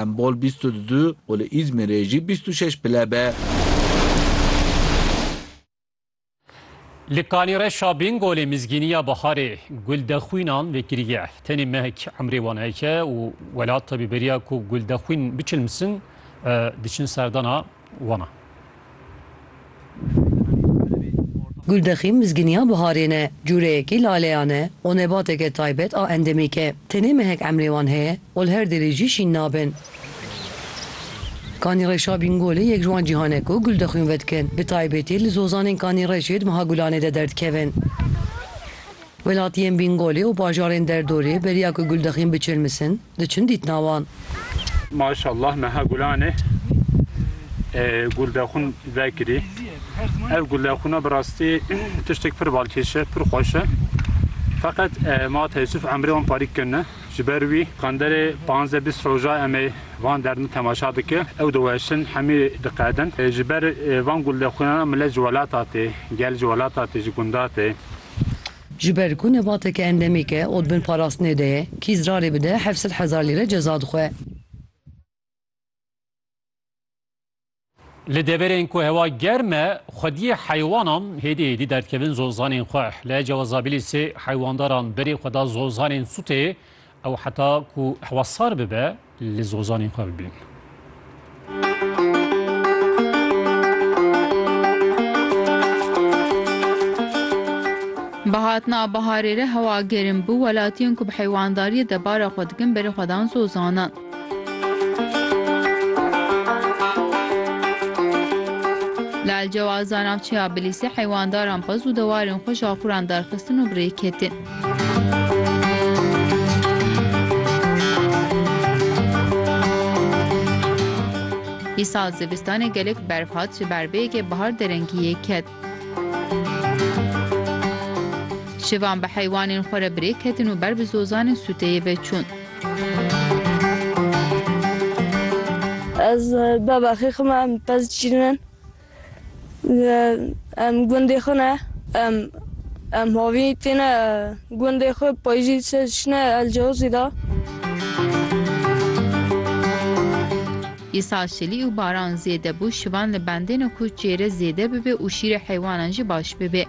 Em bol bîst û du û li Îzmîrê jî bîst û şeş pile be. Li Kanîreşa Bingolê Mizgîniya Biharê guldexwînan vekiriye. Tenê mehek emrê wan heke û welata bi beriya ku guldexwîn biçilmsin diçin serdana. Wana. Guldexîm mizgîniya biharê ne, cûreyekî laleyan e û nebateke taybet a endemîk e. Tenê mehek emrê wan heye û li her derê jî şîn nabin. Kanîreşa Bîngolê yek ji wan cîhan e ku guldexwîn vedikin, bi taybetî li zozanên Kanîreşê di meha gulanê de derdikevin. Welatiyên Bîngolê û bajarên derdorê beriya ku guldexîn biçirmisin, diçin dîtina wan. Maşallah meha gulanê guldexûn vekirî. Ev guldexûna bi rastî tiştek pir balkêş e, pir xweş e. Feqet ma teessuf emrê wan parî kin e. Ji ber wî qanderê panzdeh bîst roja em ê van derdin temaşa dikin. Ew diweşin, hemî diqedin. Ji ber van guldexûnan milet ji welata tê, gel ji welata tê, ji gunda tê. Ji ber ku nebateke endemîk e û di bin parastinê de ye, kî zirarê bide heft sed hezar lîre ceza dixwe. Li deverên ku hewa germ e, xwediyê heywanan hêdî hêdî derdikevin zozanên xwe. Li Ecewa Zabîlîsê heywandaran berê xwe da zozanên sûtê Ew heta ku hewa sar bibe li zozanên xwe bibîn. Bi hatina biharê re hewa gerim bû, welatiyên ku bi heywandariyê debara xwe dikin berê xwe dan zozanan. Li Elcewaza navçeya Bilîsê heywandaran xwe zû dewarên xwe ji axuran derxistin û bi rê ketin. Îsal zivistanê gelek berf hat ji ber vê yekê bihar derengî yê ket. Şivan bi heywanên xwe re birêk ketin û ber bi zozanên sûteyê ve çûn. Ez bavexê xwe me em pez şîrin in. Em gundê xwe ne. Em em havî têne gundê xwe payijî şine elcewizî de. Îsal şilî û baran zêde bû şivan li bendêne ku çêre zêde bibe û şîrê heywanan jî baş bibe.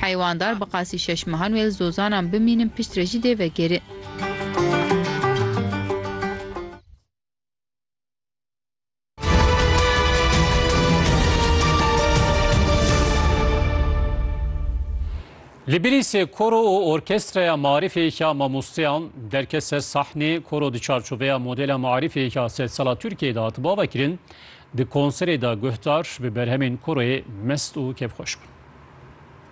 Heywanddar bi qasî şeş mehan wê li zozanan bimînin pişt re jî dê vegerin. Li Bilîsê koro û orkestreya marîfê ya mamosteyan derket ser sahnê koro di çarçoveya modela marîfê ya sed sala Tirkiyeyê de hat bavekirin di konserê de guhdar bi berhemên koroyê mest û kêfxweş bûn.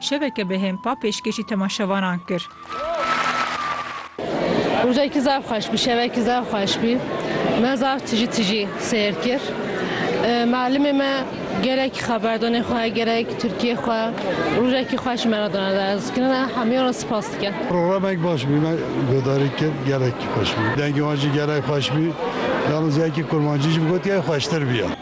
Şeveke bi hêmpa pêşkêşî temaşevanan kir. Rojekî zaf xweş bû, şevekî zaf xweş bû. Me zaf tijî tijî seyr kir. Mialimê me gelekî xeberdonê xwe, gelekî Tirkiyê xwe rojekî xweş me re dana der. Ez kirinan hemî wan re sipas dikim. Programek baş bû. Me guhdarî kir gelekî xweş bû. Dengê wan jî gelek xweş bû. Yalnîz yekê kurmancî jî bi gotiya xweştir bûya.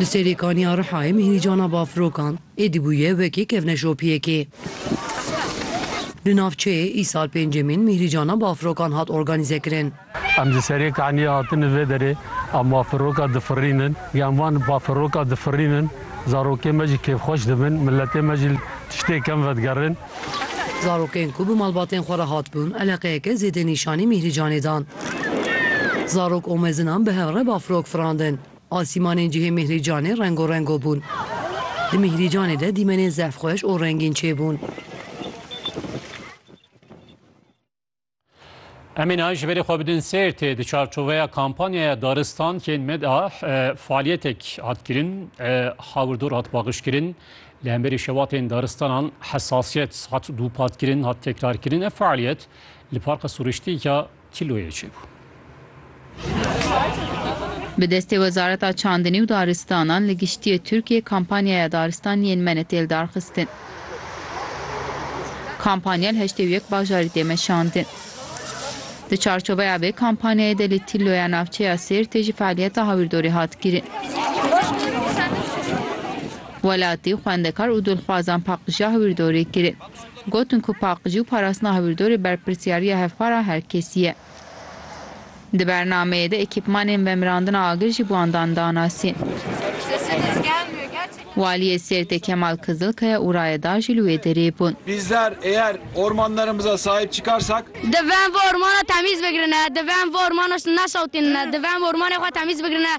Li serê kaniya Rihayê mîhrîcana bafirokan êdî bûye wekî kevneşopiyekê. Li navçeyê îsal pêncemîn mîhrîcana bafirokan hat organîzekirin. Em di serê kaniyê hatine vê derê a mafiroka difirînin. Yan van bafiroka difirînin, zarokê me jî kêfxweş dibin, miletê me jî li tiştê kem vedigerin. Zarokên ku bi malbatên xwe re hatibûn eleqeyeke zêde nîşanî Mîhrîcanê dan. Zarok û mezinan bi hev re bafirok firandin. Asîmanên cihê Mîhrîcanê rengorengo bûn. Di Mîhrîcanê de dîmenên zehfxweş û rengîn çêbûn. Em ê niha ji berê xwe bidin Sêrtê di çarçoveya kampanyaya Daristan kên me de faalyetek hat kirin, hawirdor hat paqiş kirin. Li hemberî şevatên daristanan hesasiyet hat dûpatkirin, hat tekrarkirin. Ev faaliyet li parka suriştî ya Tîloyê çêbû. Bi destê Wezareta Çandinî û Daristanan li Giştîyê Tirkiyê kampanyaya Daristan yên me ne têl darxistin. Kampanya li heştê û yek bajarî tê meşandin. Di çarçoveya vê kampanyayê de li Tîlloya navçeya Sêrtê jî fealiyeta hawîrdorê hat kirin. Welatî, xwendekar û dilxwazan paqijiya hawîrdorê kirin. Gotin ku paqijî û parastina hawîrdorê berpirsyariya hevpara herkesî ye. Di bernameyê de ekîpmanên vemirandina agir jî bû andan danasîn. Waliyê Sêrtê Kemal Kizilkaya û rayedar jî li wê derê bûn. Bizler eğer ormanlarımıza sahip çıkarsak. Divê em vê ormana temîz bigirine, divê em vê ormana neşewtînine, divê em ormanê xwe temîz bigirine.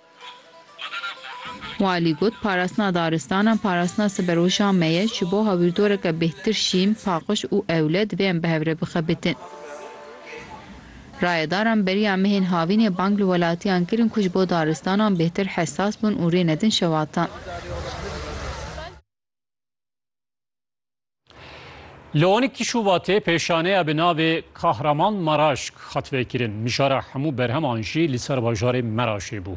Walî got, Parastina daristanan parastina siberweşan me ye, ji bo hewîrdoreke bêhtir şîn, paqij û ewle divê em bi hev re bixebitin. Rayedaran beriya mehên havînê bang li welatiyan kirin ku ji bo daristanan bêhtir hesas bin û rê nedin şewatan. Li onîkî Şubatê pêşaneya bi navê Kahraman Maraşk hat vekirin. Mijara hemû berheman jî li ser bajarê Meraşê bû.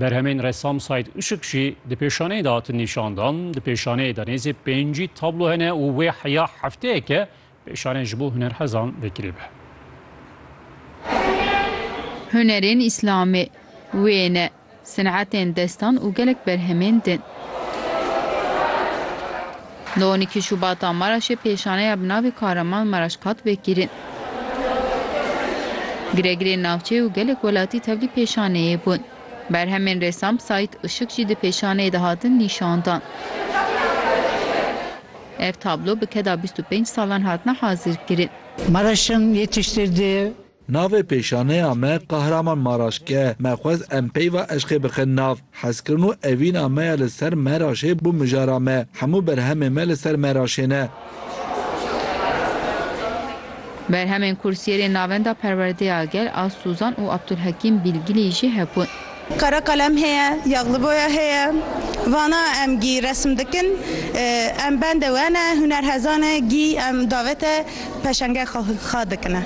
Berhemên resam Saîd Işik jî di pêşaneyê de hatin nîşandan. Di pêşaneyê de nêzî pêncî tablo hene û wê heya hefteyeke pêşane ji bo hunerhezan vekirî be. Hunerên Îslamê wê ne. Sinetên destan û gelek berhemên din. Di on îkî Şûbata Maraşê pêşaneya bi navê Kahraman Maraş hat vekirin. Giregirên navçeyê û gelek welatî tevlî pêşaneyê bûn. Berhemên ressam Saîd Işık jî di pêşaneyê de hatin nîşandan. Ev tablo bi keda bîst û pênc salan hatine hazirkirin. Maraş'ın yetiştirdiği Navê pêşaneya me Kahraman Maraşk e. Me xwest em peyva eşqê bixin nav. Hezkirin û evîna me ya li ser Meraşê bû mijara me. Hemû berhemên me li ser Meraşê ne. Berhemên kursiyerên Navenda Perwerdeya Gel a Suzan û Abdulhekîm Bîlgîlî jî hebûn. Kara kalem heye, yexli boya heye. Vana em gî resim dikin. Em bendê we ne, hunerhezan e gî em davete peşenge xwe dikine.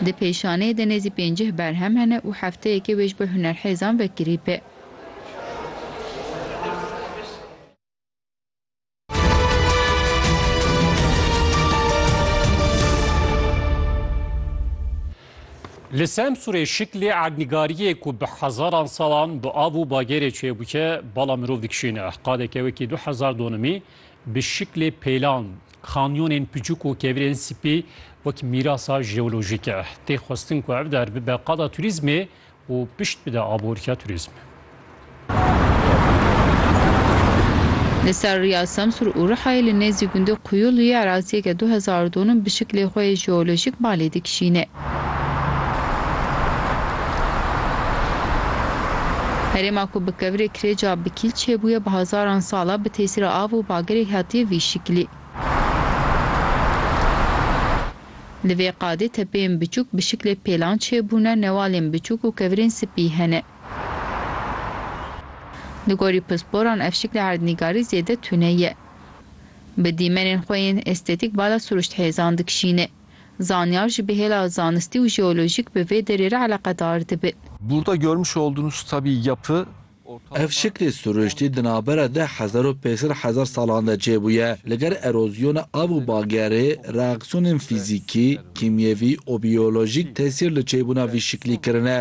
Di pêşaneyê de nêzî pêncîh berhem hene û hefteyekê wê ji bo hunerhêzan vekirî be. Li Semsûrê şiklê erdnîgariyê ku bi hezaran salan bi av û bagerê çêbûke bala mirov dikişîne. Qadeke wekî du hezar donimî bi şiklê pêlan, kanyonên piçûk û kevirên spî wek mîrasa jeolojîk e. Tê xwestin ku ev der bibe qada turîzmê û pişt bide aborîya turîzmê. Li ser riya Semsûr û Rihayê li nêzî gundê Quyuluyê eraziyeke du hezar donum bi şiklê xwe yê jeolojîk balê dikişîne. Herêma ku bi kevirê kirêca bi kîl çêbûye bi hezaran sal e bi tesîra av û bagerê hatiye vî şiklî. Li vê qadê tepeyên biçûk bi şiklê pêlan çêbûne, newalên biçûk û kevirên spî hene. Li gorî pisporan ev şiklê erdnîgarî zêde tune ye. Bi dîmenên xwe yên estetîk bala siruşthêzan dikişîne. Zanyar jî bi hêla zanistî û jeolojîk bi vê derê re eleqedar dibe. Burda görmüş olduğunuz tabii yapı Ev şiklê sirûştî di navbera deh hezar û pênc sed hezar salan de çêbûye. Li gel erozyona av û bagerê, reaksiyonên fîzîkî, kîmyevî û biyolojîk tesîr li çêbûna vî şiklî kirine.